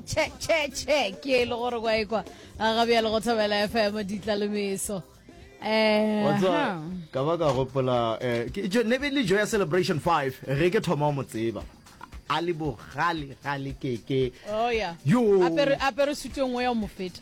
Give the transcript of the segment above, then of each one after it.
che che che ke le gore kwa ekwa a ga bjalo go thobela fm ditlalomeso eh Whatsa ka ba ka gopola eh ke jo ne be le jo ya celebration 5 ge ke thoma mo tseba a le bogale gale keke oh ya yo apere apere sutong wa ya mo feta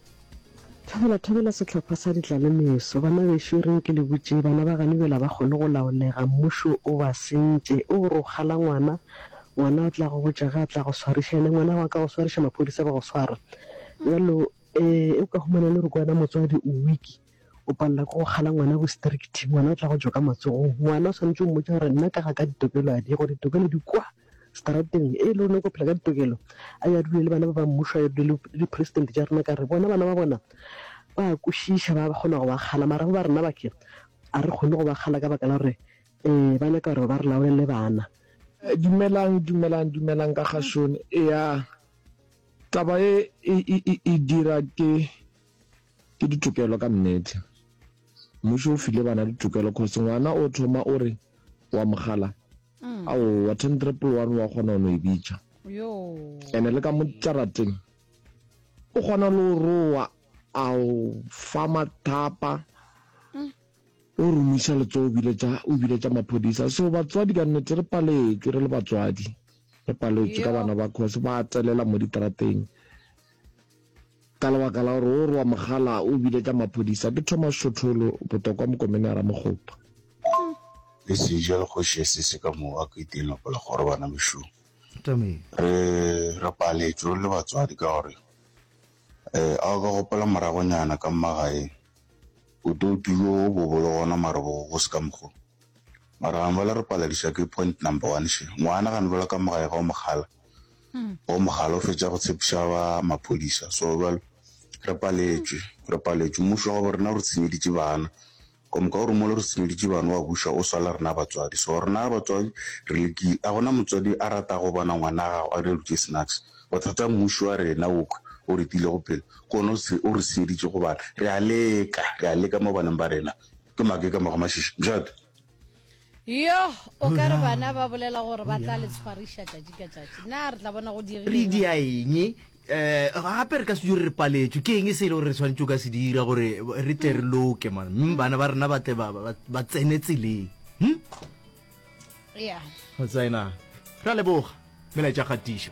Thobela, thobela sehlopha sa ditlalemeso. Bana bešo, re nke le botše, bana ba gane bjela ba kgone go laolega, mmušo o ba sentše. O gore o kgala ngwana, ngwana o tla go botša ge a tla go swariša, yena ngwana gago a ka go swariša, maphodisa ba go swara. Bjalo, ee, o ka humana le gore ke wena motswadi, o weak. O palela ke go kgala ngwana ko strict, ngwana o tla go tšwa ka matsogong. Ngwana o swanetše o mmotša gore nna ka ga ka ditokelo a di gore ditokelo di kwa strateng e le rona ko phela ka ditokelo a ya dule le bana ba ba mmušo a ya dule le president tša rena ka re bona bana ba bona ba kwešiša ba kgona go ba kgala mara ba rena ba ke a re kgone go ba kgala ka baka la gore um ba nyaka gore ba re laolele bana dumelang dumelang dumelang ka ga shone ya taba e e dira ke Ke ditokelo ka nnete. Mmušo o file bana ditokelo cause ngwana o thoma o re wa mogala mm. ao wa ten triple one wa kgona ono e bitša ene le ka mo tšarateng o kgona le o roa ao fa mathapa mm. o romisa letso o biletša maphodisa so batswadi ka nnete re paletšwe re le batswadi re paletšwe ka bana ba cause ba telela mo ditarateng Ka lebaka la gore o rwa mogala o bile ka maphodisa ke Thomas Shotholo, Botokwa Mokomene a Ramokgopa. Le seja le kgoši ya sese ka moo a ka iteng lapa la gore bana mešung. Re re paletšwe re le batswadi ka gore eh a o ka gopola moragonyana ka mmagaeng botoutu jo bo bo le gona mara bo go se ka mokgo mara gane ba le re paladiša ke point number one še ngwana gane ba le ka mogae ga o mogala Wa mogala o fetša go tshepiša ba maphodisa so jwale re paletšwe re paletšwe mmušo wa go rena re senyeditše bana ka moka o re mole re senyeditše bana wa buša o swala rena batswadi so rena batswadi re lekile a gona motswadi a rata go bona ngwana a gago a re dutše snacks bothata mmušo wa rena o o re tile go pele ke one o re senyeditše go bana re a leka re a leka mo baneng ba rena ke make ka mogo mashiši mjate yo o ka re bana ba bolela gore ba tla le tshwariša tšatši ka tšatši na re tla bona go re dia eng um eh, gape re ka se dure re paletswe ke eng e se e le gore re tshwanetse o ka se dira gore re tle re loke man mme bana ba rena ba tle ba tsene tseleng hm? ya tsena ra leboga melaetša kgatišo